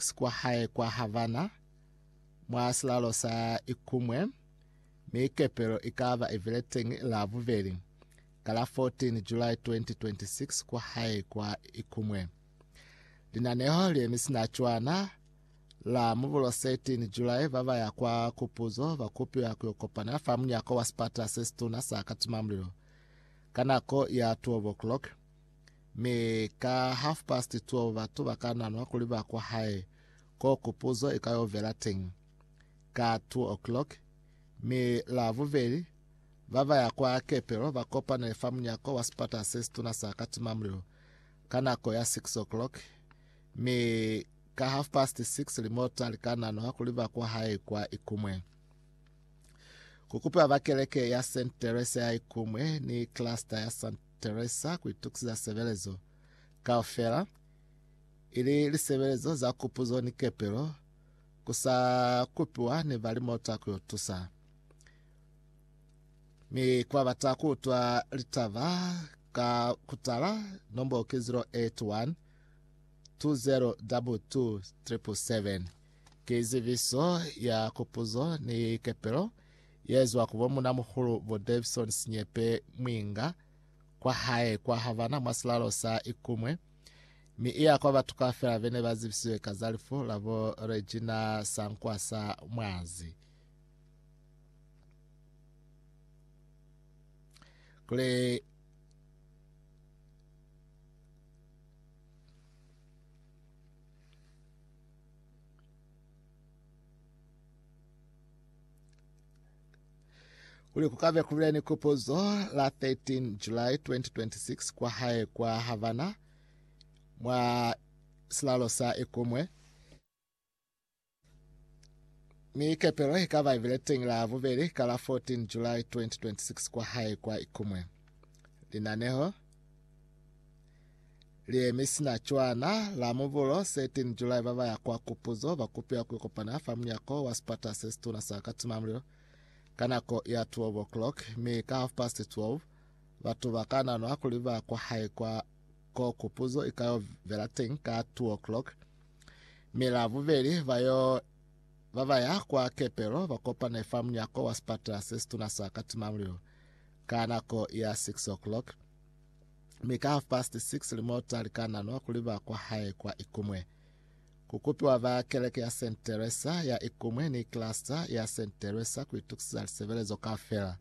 si kwa hae kwa Havana, mwa silalo sa Ikumwe, mi kepelo i ka ba i bile teñi la bubeli, ka la 14 July 2026 kwa hae kwa Ikumwe. Linaneho le mi sina cwana, la Mubulo 13 July ba ba ya kwa kupuzo ba kupiwa ku yo kopana fa munyako wa sipata se situna sa Katimamulilo ka nako ya 12 o'clock, Mi ka half past 12 batu ba ka nanwa kuli ba kwa hae ko kupuzo i ka yo vela teñi. Ka 2 o'clock, mi la bubeli, ba ba ya kwa kepelo ba kopanele fa munyako wa sipata se situna sa katimamulilo ka nako ya 6 o'clock, mi ka half past 6 limota li ka nanwa kuli ba kwa hae kwa Ikumwe. Ku kupiwa ba keleke ya St. Teresa ya Ikumwe ni cluster ya St. Teresa ku itukisiza sebelezo kaufela, ili lisebelezo za kupuzo ni kepelo, ku sa kupiwa ni balimota ku yo tusa. Mi ku ba bata ku utwa litaba ka ku tala, nombolo ki 081 2022 777. Ki zibiso ya kupuzo ni kepelo. yezwa ku bo munamuhulu bo Davison Sinyepe Mwinga kwa hae kwa Havana mwa silalo sa Ikumwe, mi iya kwa batu kaufela bene ba zibisiwe ka za lifu la bo Regina Sankwasa Mwazi. Kuli Kuli ku ka be ku bile ni kupuzo la 13 July 2026 kwa hae kwa Havana mwa silalo sa Ikumwe mi kepelo i ka ba ibile teng la bubeli ka la 14 July 2026 kwa hae kwa Ikumwe. Linaneho Liemi sina cwana, la Mubulo 13 July ba ba ya kwa kupuzo ba kupiwa ku ikopana fa munyako wa sipata se situna sa Katimamulilo ka nako ya 12 o'clock mi ka half past 12 batu ba ka nanwa kuli ba kwa hae kwa ko kupuzo i ka yo vela teng ka 2 o'clock mi la bubeli ba yo ba ba ya kwa kepelo ba kopane fa munyako wa sipata se situna sa Katimamulilo ka nako ya 6 o'clock mi ka half past 6 limota likananwa kuli ba kwa hae kwa Ikumwe. Kukupiwa ba keleke ya St. Teresa ya Ikumwe ni cluster ya St. Teresa kuitukisiza lisebelezo kaufela.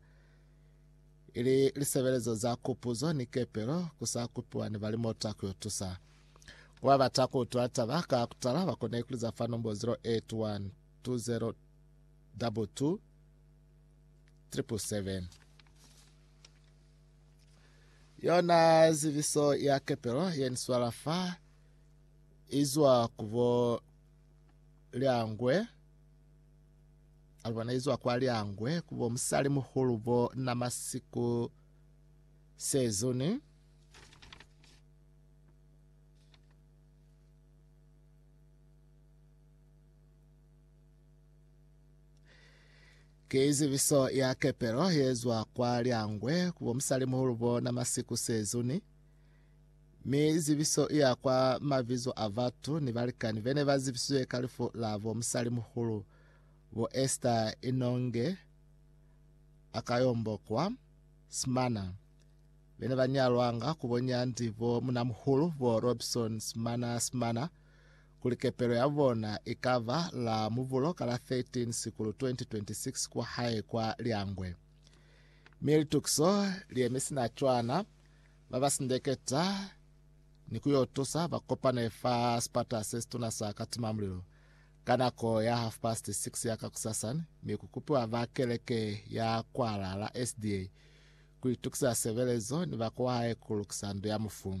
Ili lisebelezo za kupuzo ni kepelo kusakupiwa ni balimota kuyotusa. Kuba bata kuutwa taba ka kutala bakone kuliza fa nombo 081 20 22 777. Yona zibiso ya kepelo ye ni swala fa izwa ku bo Liangwe. Alibona izwa kwa Liangwe ku bo musali muhulu bo na masiku sezuni. Ki zibiso ya kepelo yezwa kwa Lyangwe ku bomusalimuhulu bona Masiku Sezuni, mi zibiso iya kwa mabizo a batu ni balikani bene ba zibisizwe ka lifu la bo musalimuhulu bo Esther Inonge Akayombo kwa Smana, bene ba nyalwanga ku bo Nyandi bo munamuhulu bo Robson Smana Smana, kuli kepelo ya bona i ka ba la mubulo ka la 13 Sikulu 2026 kwa hae kwa Lyangwe. Mi litukiso li yemi sina cwana, ba ba sindeketa ni ku yo tusa ba kopane fa sipata se situna sa Katimamulilo ka nako ya half past 6 ya kakusasan, mi ku kupiwa ba keleke ya kwa Lala SDA ku itukisa sebelezo ni ba kwa hae ku lukisa ndu ya mufu.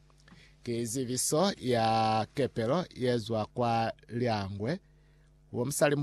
Ki zibiso ya kepelo ye zwa kwa Lyangwe. Wo musali